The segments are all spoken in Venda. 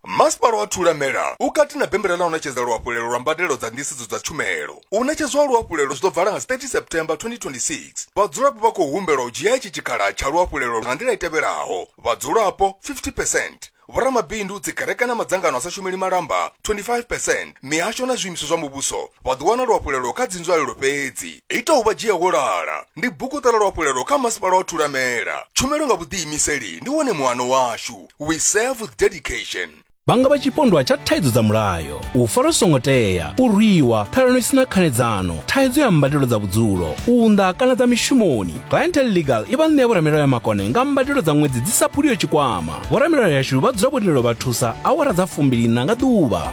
masipala wa thulamela u kati na bembela ḽa u ṋetshedza luhafhulelo lwa mbadelo dza nḓisedzo dza tshumelo u ṋetshedzwa luhafhulelo zwi ḓo bvala nga 30 september 2026 vhadzulapo vha khou humbelwa u dzhia itshi tshikhala tsha luhafhulelo nga nḓila i tevhelaho vhadzulapo 50 percent vhoramabindu dzikereke na madzangano a sa shumeli malamba 25 percent mihasho na zwiimiswa zwa muvhuso Vha ḓo wana luhafhulelo kha dzinzwalelo fhedzi. Ita u vha dzhia wo lala. Ndi bukuṱala luhafhulelo kha Masipala wa Thulamela. Tshumelo nga vhuḓiimiseli ndi wone muano washu. We serve with dedication. Vha nga vha tshipondwa tsha thaidzo dza mulayo, u farwa zwi songo tea, u rwiwa, ṱhalano i si na khanedzano, thaidzo ya mbadelo dza vhudzulo, u unḓa kana dza mishumoni. Clientele Legal i vha ṋea vhoramilayo ya makone nga mbadelo dza ṅwedzi dzi sa phuliho tshikwama. Vhoramilayo yashu vha dzula vho tendelwa vha thusa awara dza fumbili-nṋa nga ḓuvha.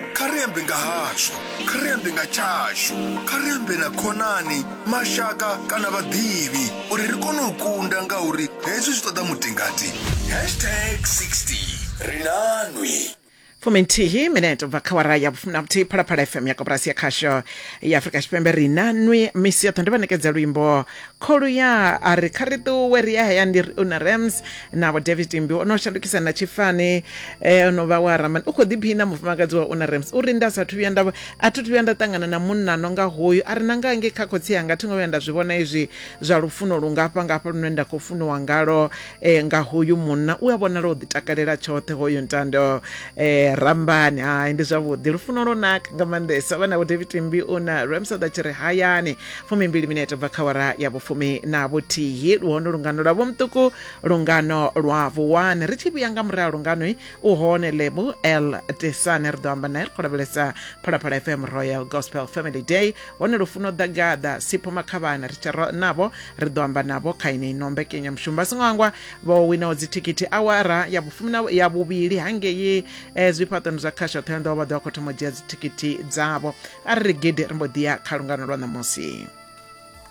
kha ri ambe nga hazwo kha ri ambe nga tshashu kha ri ambe na khonani mashaka kana vhaḓivhi uri ri kone u kunda nga uri hezwi zwi ṱoḓa mutingati hashtag 60 ri nanwi fuminthihi minete ubva kha wara ya vhufumi na vhuthihi phalaphala fm ya koporasi ya khasho ya afurika tshipembe ri na nwi misi yoṱhe ndi vha ṋekedza luimbo kholuya a ri kha ri ṱuwe ri ya hayani ri una rams navho david mbi o no shandukisa na tshifani eh, no vha wa ramani u khou ḓiphina mufumakadzi wa una rams uri nda sathu vhuya nda a thi thu vhuya nda ṱangana na munna no nga hoyu a ri na nga nge kha khotsi anga thi ngo vhuya nda zwi vhona izwi zwa lufuno lungafha ngafha lune nda khou funiwa ngalo eh, nga hoyu munna u a vhonala u ḓitakalela tshoṱhe hoyu ntando eh, rambani hai ndi zwavhuḓi lufuno lwo naka nga maanḓesa vha navho david mbi una rams a ḓa tshi ri hayani fumimbili minete bva khawara ya vhufumi na vhuthihi luhone lungano lwa vhomtuku lungano lwa vuwani ri tshi vhuya nga murahu lunganoi u hone lebu l tesane ri ḓo amba nae ri khou lavhelesa phalaphala fm royal gospel family day hone lufuno ḓagaḓa sipho makhavhana ri tshero navho ri ḓo amba navho kha ine ino mbekenyamushumo vha songo hangwa vho winaho dzithikhithi awara ya vhufumi ya vhuvhili hangei um zwifhaṱoni zwa khasho ṱhoyonḓowa vha ḓo vha khou thoma u dzhia dzithikhithi dzavho a ri ri gidi ri mbo ḓi ya kha lungano lwa ṋamusi